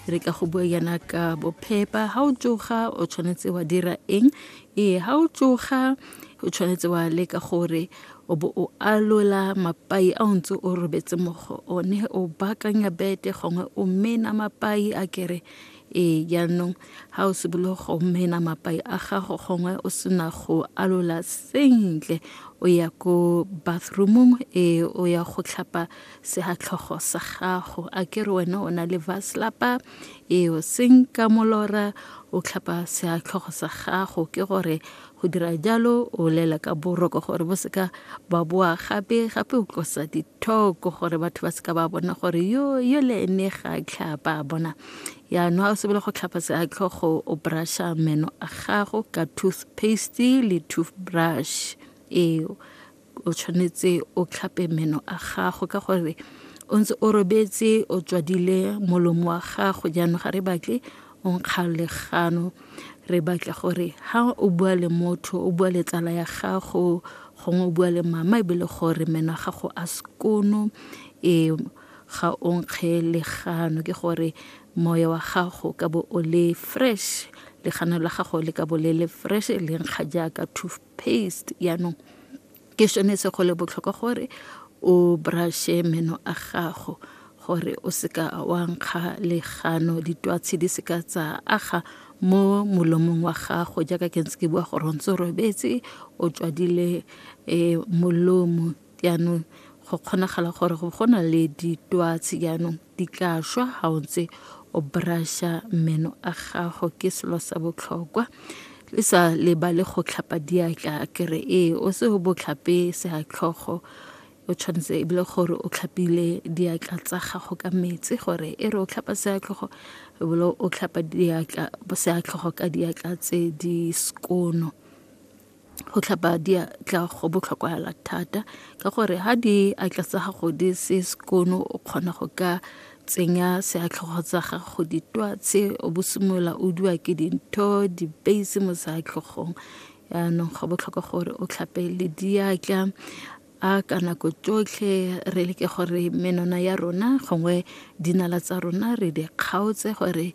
re ka go bua yana ka bophepa ga o tsoga o tshwanetse wa dira eng ee ga o tsoga o tshwanetse wa leka gore o bo o alola mapai a o ntse o robetse mo go one o baakanya bete gongwe o mena mapai a kere ee jaanong ga o sebolo go mena mapai a gago gongwe o sena go alola sentle o ya ko bathroomong e o ya go tlhapa segatlhogo sa gago a ke re wena o na le vaslapa e o senka molora o tlhapa segatlhogo sa gago ke gore Go dira jalo o lela ka boroko gore bo seka ba boa gape gape o tlosa dithoko gore batho ba seka ba bona gore yo yo le ene ga a tlhapa a bona yaanong a o sebele go tlhapa seatlhogo o brusha meno a gago ka toothpaste le toothbrush eo o tshwanetse o tlhape meno a gago ka gore o ntse o robetse o tswadile molomo wa gago jaanong ga re batle o nkga legano re batla gore ha o bua le motho o bua le tsala ya gago gongwe o bua le mama e be le gore meno a gago a sekono e ga o nkge legano ke gore moya wa gago ka bo o le fresh legano la gago le ka bo le le fresh le nkga jaaka paste yaanong ke sone se go le botlhokwa gore o brushe meno a gago gore o seka wa nkga legano ditwatshi di seka tsa aga mo molomong wa gago jaaka ke ntse ke bua gore o ntse o robetse o tswadile um molomo Jaanong go kgonagala gore go go na le ditwatsi jaanong di tla šwa ga o ntse o brasha meno a gago ke selo sa botlhokwa le sa lebale go tlhapa diatla kere ee o se o botlhape seatlhogo o tshwanetse e bile gore o tlhapile diatla tsa gago ka metsi gore e re o tlhapa seatlhogo e bile o tlhapa diatla seatlhogo ka diatla tse di skono go tlhapa diatla go botlhokwahala thata ka gore ha di atla tsa gago di se sekono o kgona go ka tsenya seatlhogo tsa gago ditwatse o bosimolola o dua ke dintho dipeisi mo seatlhogong yaanong go botlhokwa gore o tlhape le diatla a ka nako tsotlhe re leke gore menwana ya rona gongwe dinala tsa rona re di kgaotse gore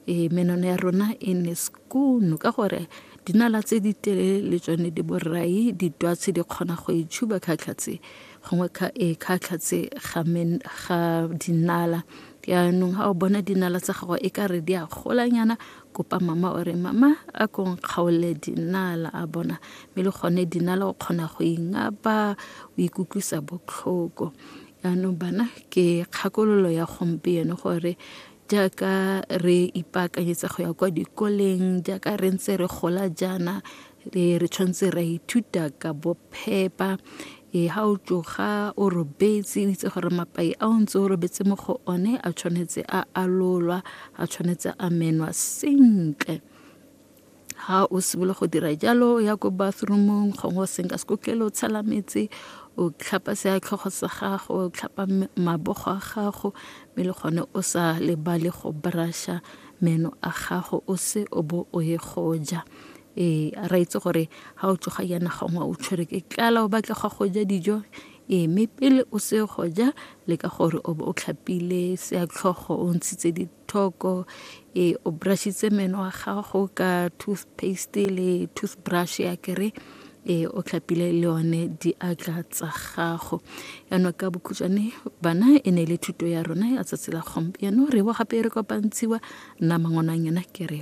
e menwana ya rona e ne skoon ka gore dinala tse di telele le tsone di borai ditwatshi di kgona go e tshuba khatlhatse gongwe e khatlhatse ga dinala yaanong ga o bona dinala tsa gago e ka re di a golanyana kopa mama o re mama a ko nkgaole dinala a bona mme le gone dinala o kgona go ingapa o ikutlwisa botlhoko yaanong bana ke kgakololo ya gompieno gore jaaka re ipaakanyetsa go ya kwa dikoleng jaaka re ntse re gola jaana e re tshwanetse ra ithuta ka bophepa e ha o tsoga o robetse o itse gore mapai a o ntse o robetse mo go one a tshwanetse a alolwa a tshwanetse a menwa sentle ha o simolola go dira jalo ya ko bathroomong gongwe o senka sekotlele o tshela metse o tlhapa seatlhogo sa gago o tlhapa mabogo a gago mme le gone o sa lebale go brusha meno a gago o se o bo o ye go ja ee a re itse gore ga o tsoga yana gongwe o tshwere ke tlala o batla ga go ja dijo ee mme pele o se go ja le ka gore o o tlhapile seatlhogo o ntshitse dithoko ee o brushitse meno wa gago ka toothpaste le toothbrush ya kere e o tlhapile le yone diatla tsa gago yaanong ka bokhutshwane bana e ne e le thuto ya rona ya tsatsi la gompieno re bo gape e re kopantshiwa nna mangwanang yona ke re